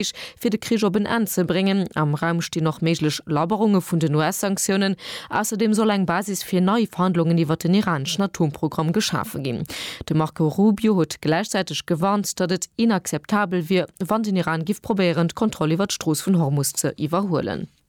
Krich, fir de Krich op en Enn ze bréngen. Am Raum stinn och méiglech Labberunge vun den US-Sanktiounen. Ausserdeem soll eng Basis fir nei Verhandlungen iwwert den iraneschen Atomprogramm geschafe ginn. De Marco Rubio huet gläichzäiteg gewarnt, datt et inakzeptabel wier, wann den Iran giff probéieren, d'Kontroll iwwert d'Strooss vun Hormus ze iwwerhuelen.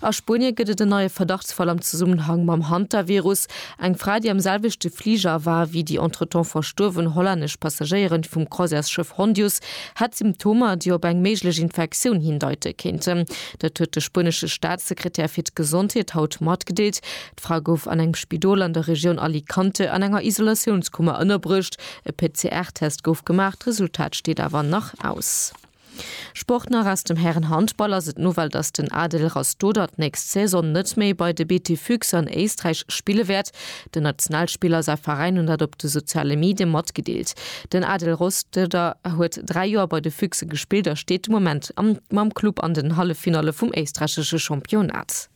A Spuenie gëtt et en neie Verdachtsfall am Zesummenhang mam Hantavirus. Eng Fra, déi am selwechte Fliger war wéi déi entretemps verstuerwen hollännesch Passagéieren vum Croisièresschëff Hondius, hätt Symptomer, déi op eng méiglech Infektioun hindeite kéinten. Dat huet de spuenesche Staatssekretär fir d'Gesondheet haut matgedeelt. D'Fra gouf an engem Spidol an der Regioun Alicante an enger Isolatiounskummer ënnerbruecht. E PCR-Test gouf gemaach, d'Resultat steet awer nach aus. Sport nach aus dem Härenhandball ass et Nouvelle, dass den Adel Rastoder d'nächst Saison net méi bei de BT Füchse an Éisträich spille wäert. Den Nationalspiller a säi Veräin hunn dat op de soziale Medie matgedeelt. Den Adel Rostoder huet 3 Joer bei de Füchse gespillt a steet de Moment mam Club an den Halleffinalle vum éisträichesche Championnat.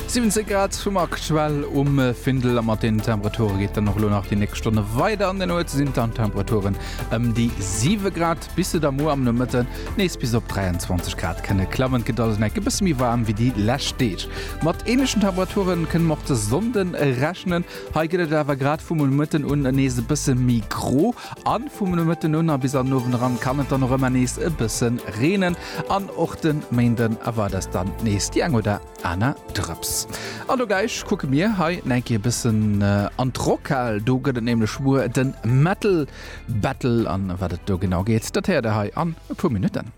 17 Grad hunn mer aktuell um Findel a mat den Temperature geet dann och elo nach déi nächst Stonne weider. An der Nuet sinn dann d'Temperaturen ëm déi 7 Grad, bis se da muer am Nomëtte nees bis op 23 Grad kënne klammen. Et gëtt also enk e bësse méi waarm wéi déi lescht Deeg. Mat änlechen Temperature kënne mer och de Sonnde rechnen. Hei gëtt et awer grad vum Nomëtten un nees e bësse méi gro. An vum Nomëtten un a bis an den Owend eran kann et dann och ëmmer nees e bëssen reenen an och de Méinden erward es dann nees déi eng oder aner Drëps. An do gleich kucke mir hei enke e bëssen an d'Rockhal, do gëtt et nämlech muer den Metal Battle an wat et do genau geet dat héiert der hei an e puer Minutten.